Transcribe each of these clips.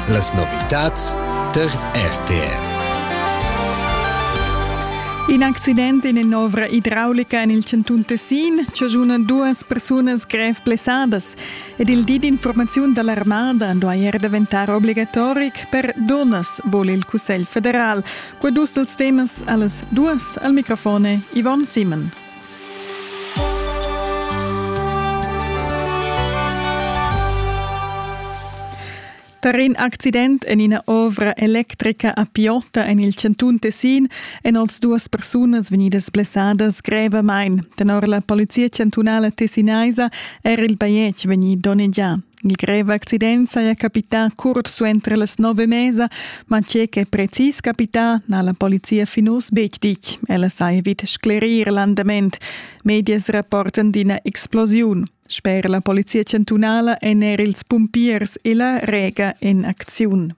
Las novitads tar RTR. In accident in in'ovra idraulica en il chantun Tessin chaschuna duas persunas grev blessadas ed il di d'informaziun da l'armada duai er daventar obligatoric per dunnas, vul il Cussegl federal. Qua dus dels temas a las duas al microfone Yvonne Simon. Tar in accident en ina ovra electrica a Piota en il chantun Tessin èn oz duas persunas vegnidas blessadas grevamain. Tenor la polizia chantunala tessinaisa era il bajetg vegnì donnegià. In grev accident saja capità curt suenter las nove mesa, ma tge ch'è precis capità n'ha la polizia fin uss betg ditg. Ella sai vid sclerir l'andament. Medias rapportan d'ina explosiun. Sper la polizia chantunala èn er ils pumpiers e la Rega en acziun.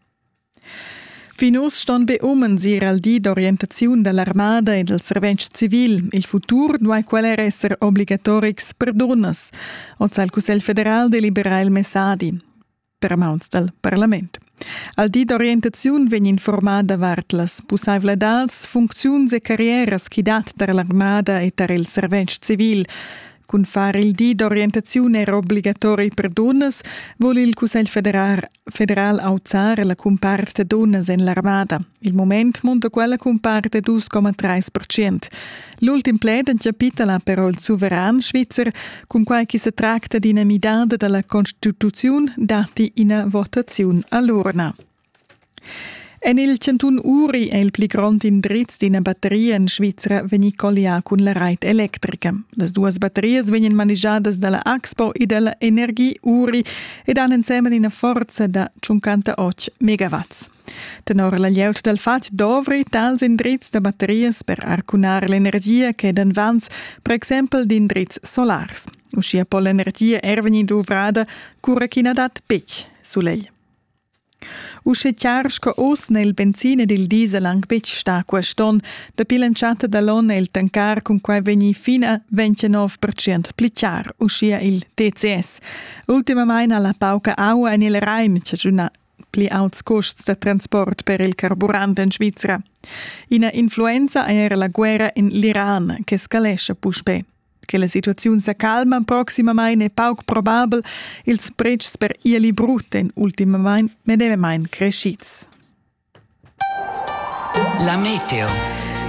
Fin uss ston be umens ir al di d'orientaziun da l'armada e dal servetsch civil. Il futur duai quel er esser obligatorics per dunnas. Oz ha il Cussegl federal deliberà il messadi per mauns dal parlament. Al di d'orientaziun vegn informaà davart las pussaivladads, funcziuns e carrieras ch'i dat tar l'armada e tar il servetsch civil. Cun far il di d'orientaziun era obligatori per dunnas vul il Cussegl federal, federal auzar la cumpart da dunnas en l'armada. Il moment munta quella cumpart da 2,3 percent. L'ultim pled encapitala però il suveran svizzer, cun quai che se tracta d'ina midada dalla constituziun datti ina votaziun all'urna. En il chantun Uri è il pli grond indriz d'ina batteria en Svizra vegnì collià cun la rait electrica. Las duas batterias vegnan manigiadas da la Axpo e da la Energie Uri ed han ensemen ina forza da 58 megawatts. Tenor la glieud dal fatg dovri tals indrizs da batterias per arcunar l'energia che dan vans, per exempel d'indrizs solars. Uschia po l'energia er vegnir duvrada cura ch'i na dat betg sulegl. Usche chiar sco oz n'è il benzin ed il diesel anc betg stà quest onn. Dapi l'entschatta da l'onn è il tancar cun quai vegnì fina 29 percent pli chiar, uschia il TCS. Ultimamain ha la pauca aua en il Rain chaschunà pli auts custs da transport per il carburant en Svizra. Ina influenza è era la guerra en l'Iran che scalescha puspè. Che la situaziun sa calma proximamain è pauc probabel, ils pretschs per ieli brut èn ultimamain medemamain crescids. La meteo.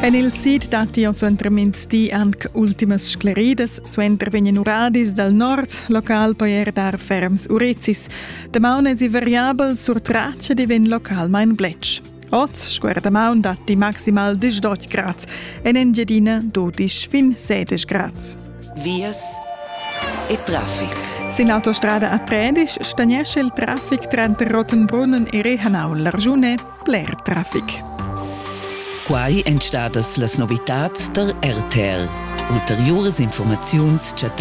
En il sid datti jau suenter mintgì anc ultimas scleridas. Suenter vegnan uradis dal nord, local poi er dar ferms urezis. Damaun èsi variabel, sur tratsch ed vegn localmain bletsch. Oz scuerda maun datti maximal 18 grads. En Engiadina dodisch fin 16 grads. Vias e traffic. Sin l'autostrada a Tredisch stagnesce il traffic tranter Rottenbrunnen e Rehanau. L'Arjune bler traffic. Quai èn stadas las novitads tar RTL. Ulteriuras informaziuns chattai